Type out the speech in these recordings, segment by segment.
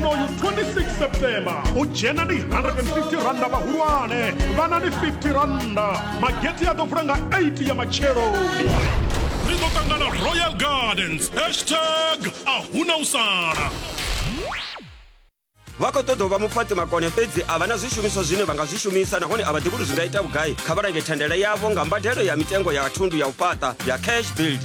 unoyu 26 september u dzhena ni 150 randa vhahulwane vhana ni 50 randa mageti a ḓo vula nga 8 ya matshelo ri ḓo ṱangana royal gardens hashtag a huna u sala vha khou ṱoḓa u vha mufhaṱi makone fhedzi a vha na zwishumiswa zwine vha nga zwi shumisa nahone a vha ḓivhi uri zwi nga ita vhugai kha vha lange thendela yavho nga mbadelo ya mitengo ya thundu ya u fhaṱa ya cash build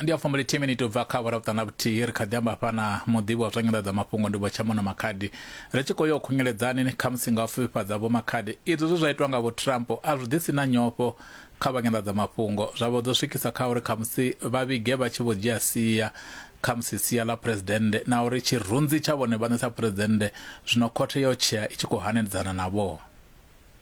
ndi ya fumbo lithihi miniti u bva kha awara vhuṱana vhuthihi ri kha ḓi amba hafha na muḓivhi wa zwa nyanḓadzamafhungo ndi vhotshamono makhadi ri tshi khou yo khungeledzani kha musi nga u fifhifhadza vho makhadi izwo zwe zwa itwa nga vho trump a zwi ḓisi na nyofho kha vha nyanḓadzamafhungo zwa vho dzo swikisa kha uri kha musi vha vhige vha tshi vho dzhia sia kha musi sia ḽa phuresidennde na uri tshirunzi tsha vhone vhaṋe sa phuresidennde zwino khothe yo tshea i tshi khou hanedzana navho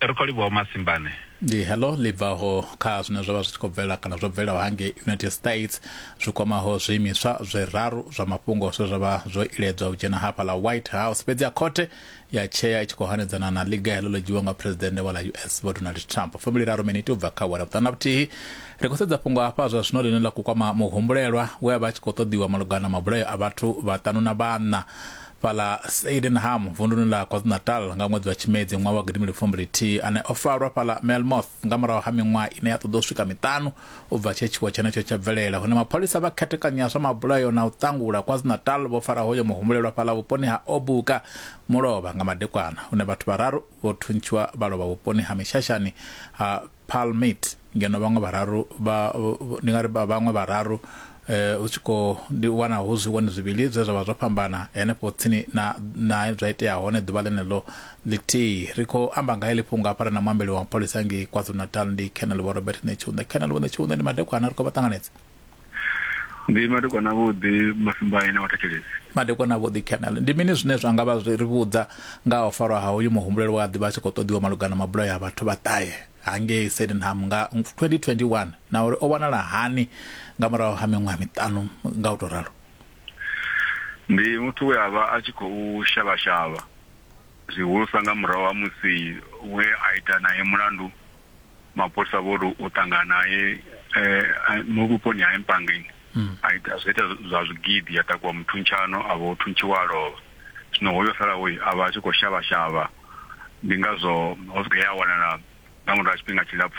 ri khou livhuwa masimbane ndi heḽo ḽi bvaho kha zwine zwa vha zwi tshi khou bvela kana zwo bvelaho hangei united states zwi kwamaho zwiimiswa zwiraru zwa mafhungo zwe zwa vha zwo iledzwa u dzhena hafha ḽa white house fhedzi ya khothe ya tshea i tshi khou hanedzana na ḽiga heḽo ḽo dzhiwa nga phuresidennde wa ḽa us vho donald trump fumi liraru miniti u bva kha wera vhuṱana vhuthihi ri khou sedza fhungo hafha zwa zwino ḽine ḽa khou kwama muhumbulelwa we a vha a tshi khou ṱoḓiwa malugana na mabulayo a vhathu vhaṱanu na vhaṋa fhaḽa Sydenham vunduni ḽa KwaZulu-Natal nga ṅwedzi wa Tshimedzi ṅwaha wa gidimili fumbili-thihi, ane o farwa fhaḽa Melmoth nga murahu ha miṅwaha ine ya ṱoḓa u swika miṱanu u bva tshe tshiwo tshenetsho tsha bvelela, hune mapholisa vha khethekanyo ya zwa mabulayo na u ṱangula KwaZulu-Natal vho fara hoyo muhumbulelwa fhaḽa vhuponi ha Obuka, Mulovha, nga madekwana, hune vhathu vhararu vho thuntshiwa vha lovha vhuponi ha Mishashani ha Paarl Meet ngeno vhaṅwe vhararu vha ndi nga ri vhaṅwe vhararu hu tshi khou ndi wana hu zwivhoni zwivhili zwe zwa vha zwo fhambana henefho tsini na na zwa itea hone ḓuvha ḽeneḽo ḽithihi ri khou amba nga heḽi fhungo hafha ri na muambeli wa mapholisa ngei kwazulu-natal ndi colonel vho robert netshiunde colonel vho netshiunde ndi madekwana ri khou vha ṱanganedza Ndi madekwana avhuḓi Masimbae na Vhathetshelesi. Madekwana avhuḓi Colonel. Ndi mini zwine zwa nga vha zwi ri vhudza nga ha u farwa ha hoyu muhumbulelwa we a ḓivha a tshi khou ṱoḓiwa malugana mabulayo a vhathu vhaṱahe hangei Sydenham nga 2021 na uri o wanala hani nga murahu ha miṅwaha miṱanu nga u tou ralo? Ndi muthu we a vha a tshi khou shavha-shavha, zwihulusa nga murahu ha musi we a ita nae mulandu. mapholisa vho ri u ṱangana naye mu eh, vhuponi ha empangeni hmm. a ita zwo ita zwa zwigidi ya takuwa muthuntshano a vho thuntshiwa a lovha zwino hoyo salaho a vha a tshi khou shavha shavha ndi ngazwo ho swika ya wanala nga murahu ha tshifhinga tshilapfhu